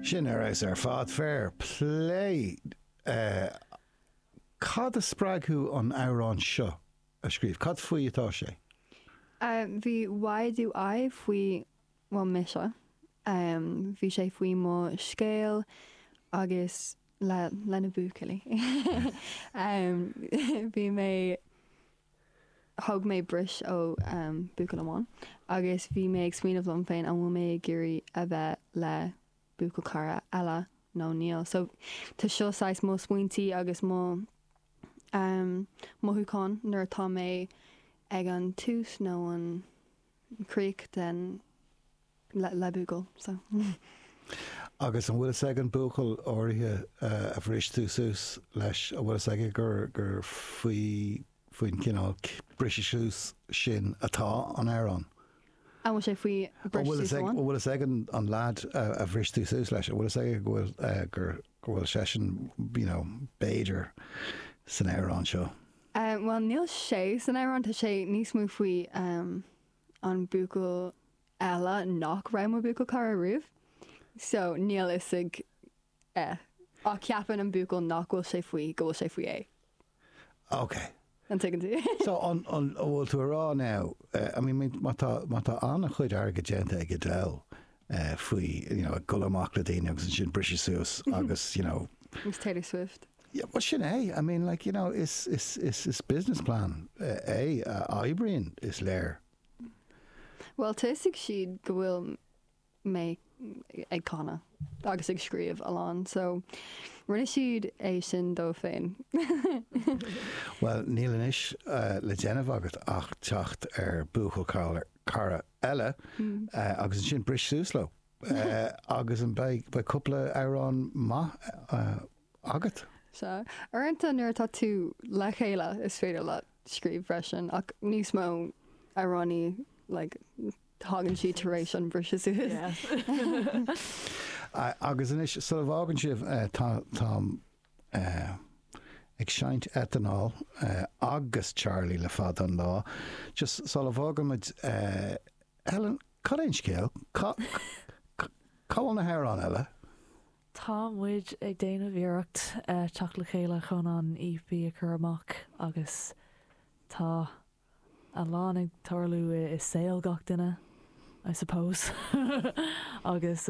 Sin ar fheabhas ar fad. Fair plé. Cad a spreag thú an t-amhrán seo a scríobh? Cad faoi atá sé? Bhí Why Do I faoi bhuel, mise. Bhí sé faoi mo scéal agus le, le na buachaillí. Bhí mé. Thóg mé bris ó buachaill amháin agus bhí mé ag smaoineamh liom féin, an bhfuil mé ag iarraidh a bheith le buachaillchara eile nó níl? So tá seo saghas mo smaointí agus mo mothúcháin nuair atá mé ag an tús nó an críoch den. le buachaill so. Agus an bhfuil fhios ag an buachaill áirithe a bhris tú suas leis, an bhfuil fhios aige gur, gur faoi, faoin gcineál briseadh suas sin atá an amhrán? An bhfuil sé faoi bhriseadh suas amháin? An bhfuil fhios ag an lead a bhris tú suas leis, an bhfuil fhios aige go bhfuil, gur, go bhfuil seisean, you know, b'fhéidir san amhrán seo? Bhuel níl sé san amhrán, tá sé níos mó faoi. an buachaill eile nach raibh mo bhuachaillchara riamh so níl fhios ag é ach ceapann an buachaill nach bhfuil sé faoi go bhfuil sé faoi é. Ok. An dtuigeann tú? So an an an bhfuil tú ag rá now uh, I mean má tá má tá an-chuid airgid déanta ag Adele uh, faoi you know, ag dul amach le daoine agus ansin briseadh suas agus you know, Miss Taylor Swift. Yeah, bhuel sin é, I mean, like, you know, is, is, is, is business plan é a oibríonn, is léir. Bhuel, thosaigh siad go bhfuil mé ag canadh agus ag scríobh a lán, so rinne siad é sin dóibh féin. Bhuel, níl anois le déanamh agat ach teacht ar buachaillchara eile agus ansin bris suas leo. Agus ansin beidh cúpla amhrán maith agat? Sea. Uaireanta nuair atá tú le chéile is féidir leat scríobh freisin ach níos mó amhránaí like thagann siad tar éis an briseadh suas. Agus anois sula bhfágann sibh tá mé ag seinnt Étáin agus Charlie le fada an lá just sula bhfágann muid Helen, cad é an scéal? Cá bhfuil na hamhráin eile? Tá muid ag déanamh iarracht teacht le chéile chun an EP a chur amach agus tá a lán ag tarlú i saol gach duine, I suppose, agus.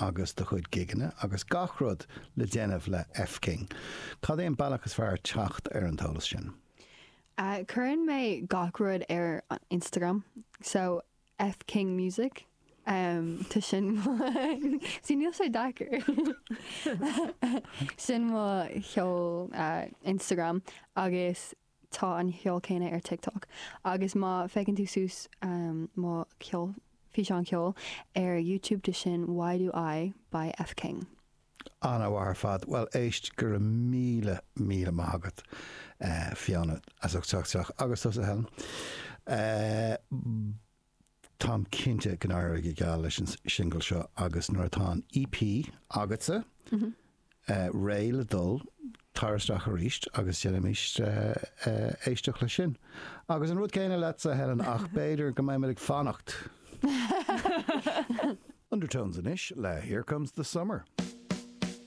agus do chuid gigeanna agus gach rud le déanamh le F. King. Cad é an bealach is fearr teacht ar an t-eolas sin? Cuireann mé gach rud ar an Instagram, so F. King Music. Tá sin mo, 's níl sé deacair. Sin mo cheol Instagram agus tá an cheol céanna ar TikTok agus má féachann tú suas mo ceol, físeán ceol, ar YouTube de sin Why Do I by F King. Ana-mhaith ar fad. Bhuel éist, go raibh míle míle maith agat Fiona as ucht teacht isteach agus tusa Helen. táim cinnte go n-éireoidh go geal leis an singil seo agus nuair atá an EP agatsa réidh le dul, tar isteach arís agus déanaimis éisteacht leis sin. Agus an rud céanna leatsa, Helen, ach b'fhéidir go mbeimid ag fanacht! Undertones anois le Here Comes the Summer.